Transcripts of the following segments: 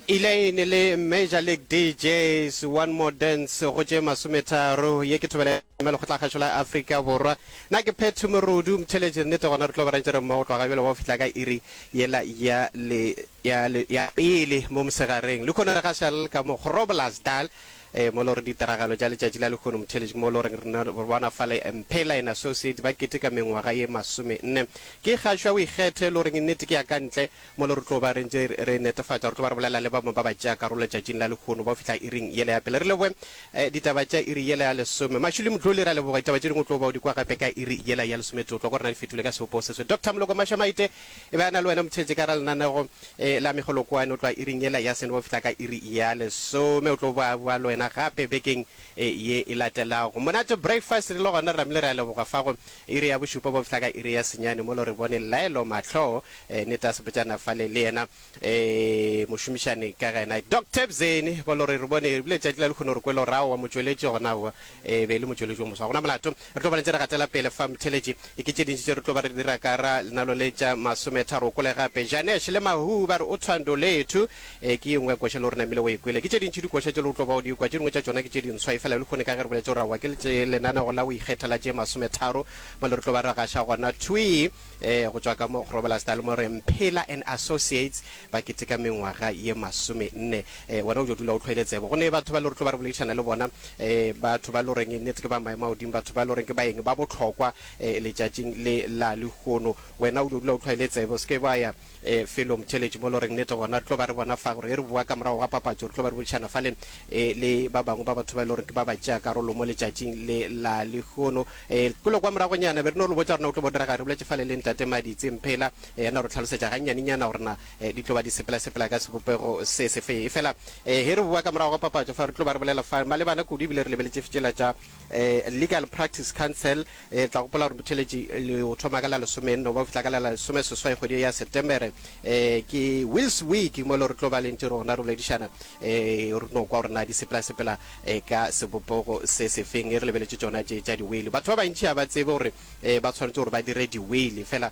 Elaine le Major League DJs, One More Dance go tše masometharo. Ye ke thobela ya lekgotlakgašo la Afrika Borwa. Na ke Phetho Morudu, mtheletši nnete gona re tlo ba rentšere mmogo tloga bjale go fihla ka iri yela ya le ya le ya pele mo mosegareng. Lekhono re gašal ka mo Groblersdal eh, mo lo re ditiragalo tša letšatši la lekhono mtheletši mo lo reng rena re bona fa le Mphela and Associates ba keteka mengwaga ye masome nne. Ke kgašwa o ikgethe lo reng nnete ke ya ka ntle mo le re tlo ba re ntše re netefatša re tlo ba re bolela le ba bangwe ba ba tšea karolo letšatšing la lehono ba o fihla iring yela ya pele. Re leboge eh, ditaba tša iri yela ya lesome. Mashuli Mdluli, re a leboga. Ditaba tše dingwe o tlo ba o di kwa gape ka iri yela ya lesometee. O tlo kwa re na di fetole ka sebopo se swe. Doctor Moloko Mashamaite e be a na le wena motheetše ka ra lenanego eh, la Megolokwane. O tloa iring yela ya sene ba o fihla ka iri ya lesome. O tlo ba boa le wena gape bekeng eh, ye e latelago. Monate Breakfast re le gona re ramile re a leboga fa go Iri ya bošupa bo fihla ka iri ya senyane mo lo re bone Llaelo mahloo eh, neta sebotšana fale le yena eh, mošomišani ka gena Doc Tebzeni bo lo re re bone ebile tšatši la lekgono re kwele gore aowa motšweletši gona aowa eh, be e le motšweletši o moswa gona molato re tlo ba ntse re gatela pele fa mtheletši e ke tše dintši tše re tlo ba re dira ka ra lenalo le tša masometharo o kole gape Janesh le Mahuu ba re o thwando lethu Ee, ke ye nngwe ya koša le o re namile o e kwele. Ke tše dintši dikoša tše le o tlo ba o di kwa, tše dingwe tša tšona ke tše dinswa, efela lehono ka ge re boletše gore aowa ke le tše lenanego la go ikgetha la tše masometharo, bjale re tlo ba re gaša gona thwii ee go tšwa ka mo Grobelaars Dale mo re Mphela and Associates ba keteka mengwaga ye masomenne. Ee, wena o tšo dula o tlhoile tsebo. Go ne batho bale re tlo ba re boledišana le bona, ee, batho ba le goreng nnete ke ba maemo a godimo, batho ba le goreng ke baeng ba bohlokwa ee letšatšing le la lehono. Wena o tšo dula o tlhoile tsebo, o se ke wa ya. E, felong, theletše mo loreng, nnete gona re tlo ba re bona fa gore ge re bowa ka morago ga papatšo, re tlo ba re boledišana fale e, le ba bangwe ba batho ba e le gore ke ba ba tšea karolo mo letšatšing le la lehono. E, kule kwa moragonyana be re no lo botša gore na go tlo bo direga, re boletše fale le Ntate Maditse Mphela, e, ya no re tlhalosetša gannyanenyana gore na e, di tlo ba di sepela-sepela ka sebopego se se fe. Efela e, ge re bowa ka morago ga papatšo fa re tlo ba re bolela fa malebana kudu ebile re lebeletše tšela tša e, Legal Practice Council, E tla gopola gore botheeletši le o thoma ka la lesome nne goba go fihla ka la la lesome seswai kgwedi ya September. E ke Wheels Week mo e le gore re tlo ba lentši re gona re boledišana e re no kwa gore na di sepela sepela e ka sebopogo se se feng e re lebeletše tšona tše tša di-whale. Batho ba bantši ga ba tsebe gore e ba tshwanetse gore ba dire di-whale fela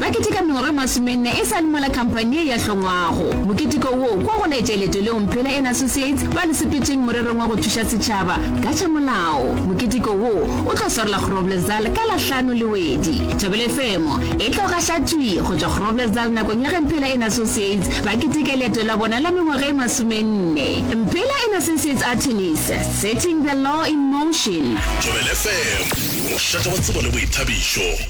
Ba keteka mengwaga e masomenne e sa le mola khamphani ye ya hlongwago. Moketeko wo kwa go laetša leeto leo Mphela and Associates ba le sepetšeng morerong wa go thuša setšhaba ka tša molao. Moketeko wo o tlo swarela Groblersdal ka la hlano le wedi. Thobela FM e tlo gaša thwi go tšwa Groblersdal nakong ya ge Mphela and Associates ba keteka leeto la bona la mengwaga e masomenne. Mphela and Associates Attorneys, Setting the Law in Motion. Thobela FM, mošate wa tsebo le boithabišo.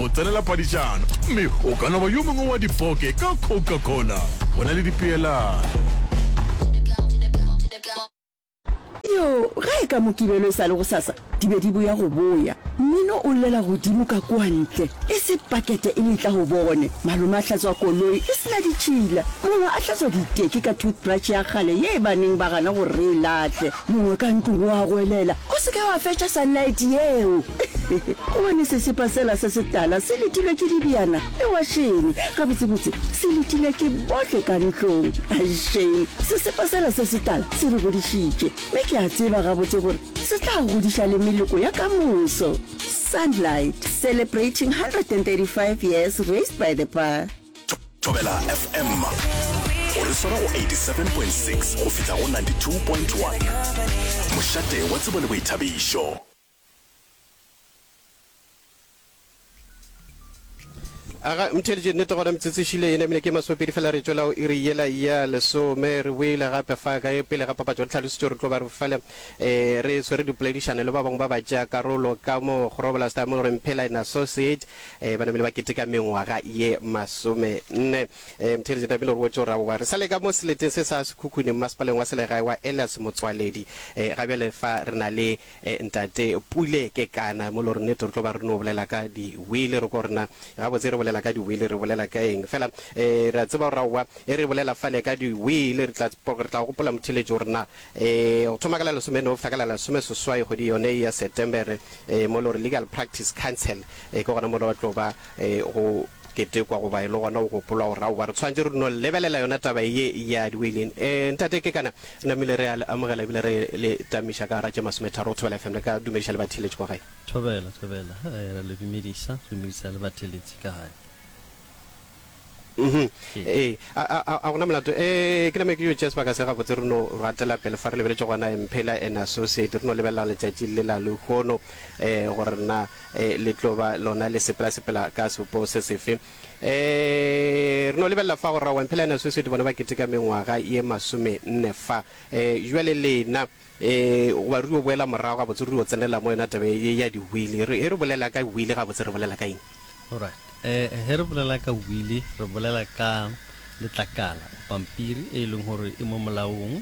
go tsenela padišano, gomme o ka no ba yo mongwe wa dipoke ka Coca-Cola. Go na le dipeelano. Yoo, ge e ka Mokibelo e sa le gosasa, di be di boya go boya. Mmino o llela godimo ka kua ntle. E se pakete e letla go bone. Malome a hlatswa koloi e se na ditšhila. Mongwe a hlatswa diteki ka toothbrush ya kgale ye e ba neng ba gana gore re e lahle. Mongwe ka ntlong o a goelela, O se ke wa fetša sunlight yeo! Gobane sesepa sela se setala se letilwe ke dibjana le wašene, gabotsebotse se letilwe ke bohle ka ntlong. Aešeng, sesepa sela se setala se re godišitše, mme ke a tseba gabotse gore se tla godiša le meloko ya ka moso. Sunlight, Celebrating 135 Years Raised by the Bar. Thobela FM go re swara go 87.6 go fihla go 92.1, mošate wa tsebo le boithabišo. Aga, ntheeditše nnete gona metsotso e šile e namile ke masomepedi fela re tšwela go iri yela ya lesome. Re boile gape fa kae pele ga papatšo re tlhalosetšwe gore re tlo ba re fale um re swere dipoledišano le ba bangwe ba batšeakarolo ka mo Grobler Stammelre Mphela and Associate um ba namile ba keteka mengwaga ye masomenne. Um Ntheeditše tlamehile re botše gore aowa re sa le ka mo seleteng se sa sekhukhune mmasepaleng wa selegae wa Elias Motsoaledi um ga bjale fa re na le Eh ntate Pule Kekana mo lore nete re tlo ba re no bolela ka di wheel re ko rena gabotse re bolela ka di wheel re bolela ka eng fela eh re a tseba gore aowa e re bolela fale ka di wheel re tla re tla gopola motheletši gore na eh go thoma ka la lesome no fihla ka la lesome seswai kgwedi yone ya September eh mo lore legal practice council eh ke gona mo re tlo ba eh go Ketekwa goba e le gona go gopolwa go ra goba re tshwanetše re no lebelela yona taba ye ya diweiling. E, Ntate Kekana, namile re a le amogela ebile re le tamiša ka gara tše masometharo go Thobela FM. Le ka dumediša le batheeletši kwa gae. Thobela, Thobela, e, re a le dumediša, re dumediša le batheeletši ka gae. Uhum, Ee. ee, a, a, a, a go na molato? E, ke name ke yo tšea sebaka se gabotse re no gatela pele fa re lebeletše gona Mphela and Associate, re no lebelelang letšatši le la lehono, e, gore na. Ee, le tlo ba lona le sepelasepela ka sepo se sefe? Ee, re no lebelela fa go Rra Wamphela yana sweswedi bona ba keteka mengwaga ye masomenne fa. Ee, bjale lena, ee, goba re yo boela morago gabotse, re yo tsenela mo yona taba ye ya diwili. Re, ge re bolela ka wili gabotse re bolela ka eng? Alright. Ee, ge re bolela ka wili re bolela ka letlakala, pampiri e e leng gore e mo molaong.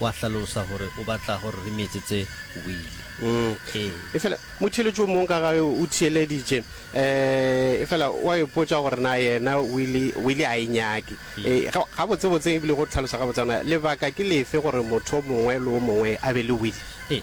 Wa hlalosa gore o batla gore re metsetse wili. Ee. Efela motheeletši o mongwe ka ga ge o theeleditše, efela o a ipotša gore na yena wili, wili a e nyake. Ee, gabotsebotse, e bile go hlalosa gabotse gona, lebaka ke lefe gore motho o mongwe le o mongwe a be le wili? Ee,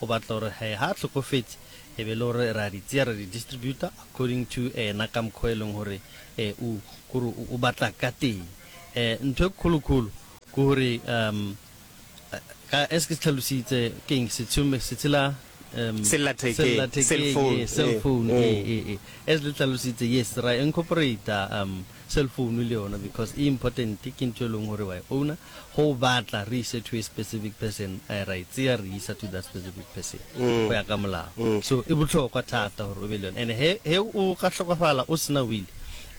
o batla gore he ha a hlokofetše e be le gore re a di tseya ra di distributa according to ena ka mokgwa e leng gore e o kore o batla ka teng e ntho e kgolokholo ke gore um ka as ke se tlhalositse ke eng setshomme se tshela um sellathekeng cell phone e e e as le tlhalositse yes ra incorporate um Cellphone le yona because e important ke ntho e leng gore wa e owner, ge o batla re ise to a specific person ra e tseya re isa to that specific person go ya ka molao. So e bohlokwa thata gore o be le yona and he he o ka hlokofala o sena will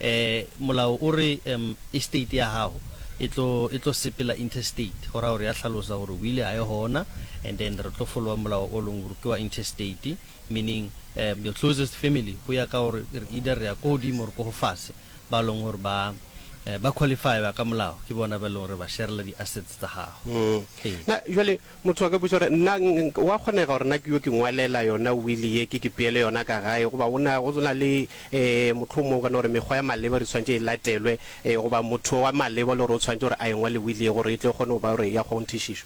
um molao o re um estate ya gago e tlo e tlo sepela intestate go raya gore ya hlalosa gore will ga e gona and then re tlo followa molao o leng gore ke wa intestate. meaning um your closest family, go ya ka gore either re ya ko godimo or ko go fase, ba e leng gore ba um ba qualify ba ka molao, ke bona ba e leng gore ba sharela di assets tsa gago. Ee. Na jwale motho a ka botša gore nna ng- ng- wa kgonega gore na ke yo ke ngwalela yona wili ye ke ke peele yona ka gae goba go na go na le um mohlomong o ka no gore mekgwa ya maleba re tshwanetse e latelwe um goba motho wa maleba le gore o tshwanetse gore a e ngwale wili ye gore e tle e kgone go ba gore ya kgonthišišo?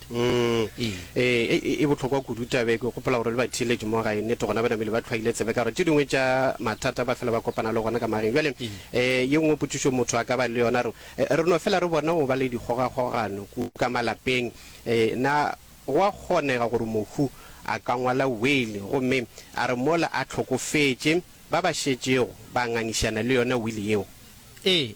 nnete. Ee, e bohlokwa kudu taba e. Ke gopola gore le batheeletši mo gae, nnete gona ba namile ba tlhwaile tsebe ka gore tše dingwe tša mathata ba fela ba kopana le gona ka mageng. Bjale ye nngwe potšišo motho a ka ba le yona, re re no fela re bona go ba le dikgogakgogano kudu ka malapeng. Na go a kgonega gore mohu a ka ngwala wili gomme a re mola a hlokofetše, ba ba šetšego ba ngangišana le yona wili yeo? Ee,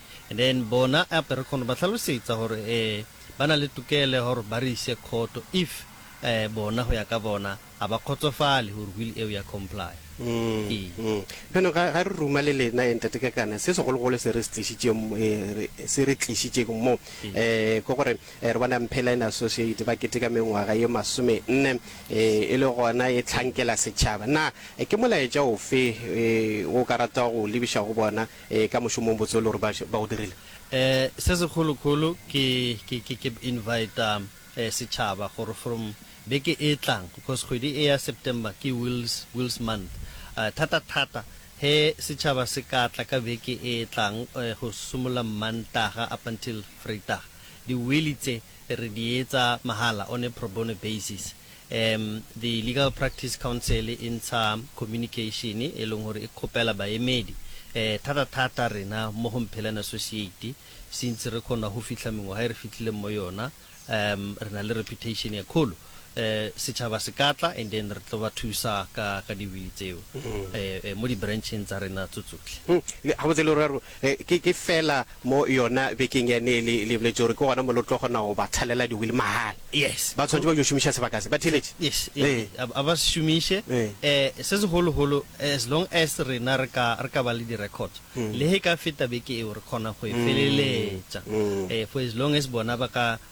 and then bona ape re khona ba hlalosetsa gore eh ba na le tokelo ya gore ba re ise khoto if eh bona go ya ka bona a ba khotsofale gore will eo ya comply Mm, Ee. mm. Bjano ga ga re ruma le lena eh, ntate kakana se segologolo se re se tlišitše mo- eh, re- se re tlišitšeng mo Ee. eh ke gore eh, re bona mpheline associate ba keteka mengwaga ye masome nne eh, e le gona e tlhankela setšhaba na eh, ke molaetša ofe eh, o ka rata go lebiša go bona Ee, ka mošomong botse o le gore ba, ba o dirile. E, se segolo-golo ke, ke, ke, ke invita e, setšhaba gore from beke e tlang, because kgwedi e ya September ke Wills, Wills Month, e, thata-thata he setšhaba se ka tla ka beke e tlang, e, go simolla Mmantaga up until Vrydag, di-willy tse re di etsa mahala on a pro bono basis. Um The Legal Practice Council e ntsha communication e leng gore e kgopela baemedi, um thata-thata rena mo go Mphelane Associate, since re kgona go fihla mengwaga e re fihlileng mo yona, um re na le reputation e kgolo, um setšhaba se ka tla and then re tlo ba thusa ka ka di-will tseo, um mo di-branch-eng tsa rena tso tsohle. Gabotse le ra Ke, ke feela mo yona bekeng yane e le, le boletše gore ke gona mo le tlo kgona go ba thalela di-wheel mahala. Yes. Ba swanetše ba yo šomiša sebaka se. Ba theeletše? Yes, e, Ee. a, a ba se šomiše. Ee. Eh, se segologolo, as long as rena re ka, re ka ba le di-records, le ge e ka feta beke eo, re kgona go e feleletša. Eh, for as long as bona ba ka,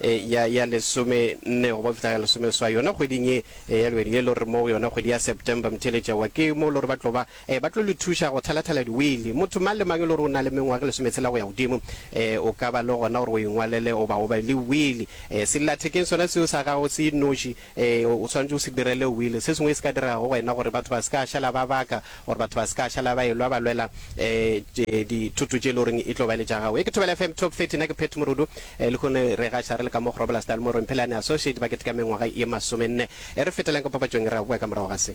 e, ya, ya lesome nne go ba fihla ya lesome swa yona kgweding ye e, ya lwedi ye lo re mo go yona kgwedi ya september mtheletša wa ke mo lo re ba tlo ba e, ba tlo le thuša go thalathala diwili motho mang le mang e lo re o na le mengwaga lesometshela go ya godimo e, o ka ba le gona gore o ingwalele o ba o be le wili e, sellathekeng sona seo sa gago se noši Ee, o swanetše o se direle wili. Se sengwe e se ka diregago wena gore batho ba se ka šala ba baka, gore batho ba se ka šala ba elwa ba lwela dithoto tše e le goreng e tlo ba le tša gago. Ye ke Thobela FM Top 30, na ke Pat Morudu. Lehono re gaša re le ka mo Groblersdal mo Romphelane Associate ba keteka mengwaga ye masomenne. E re feteleng ka papatšong e re a boa ka morago ga se.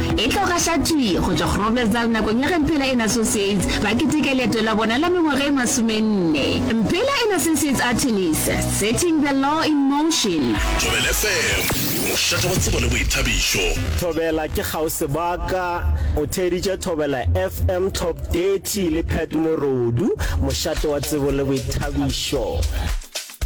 E tlo gašatšwii go tšwa Groblersdal nakong ya ge Mphela and Associates ba keteka leeto la bona la mengwaga e masomenne. Mphela and Associates Artilis, Setting the Law in Motion. Thobela FM, mošate wa tsebo le boithabišo. Thobela ke kgauswi ba ka. O theeditše Thobela FM Top 30 le Pat Morodu, mošate wa tsebo le boithabišo.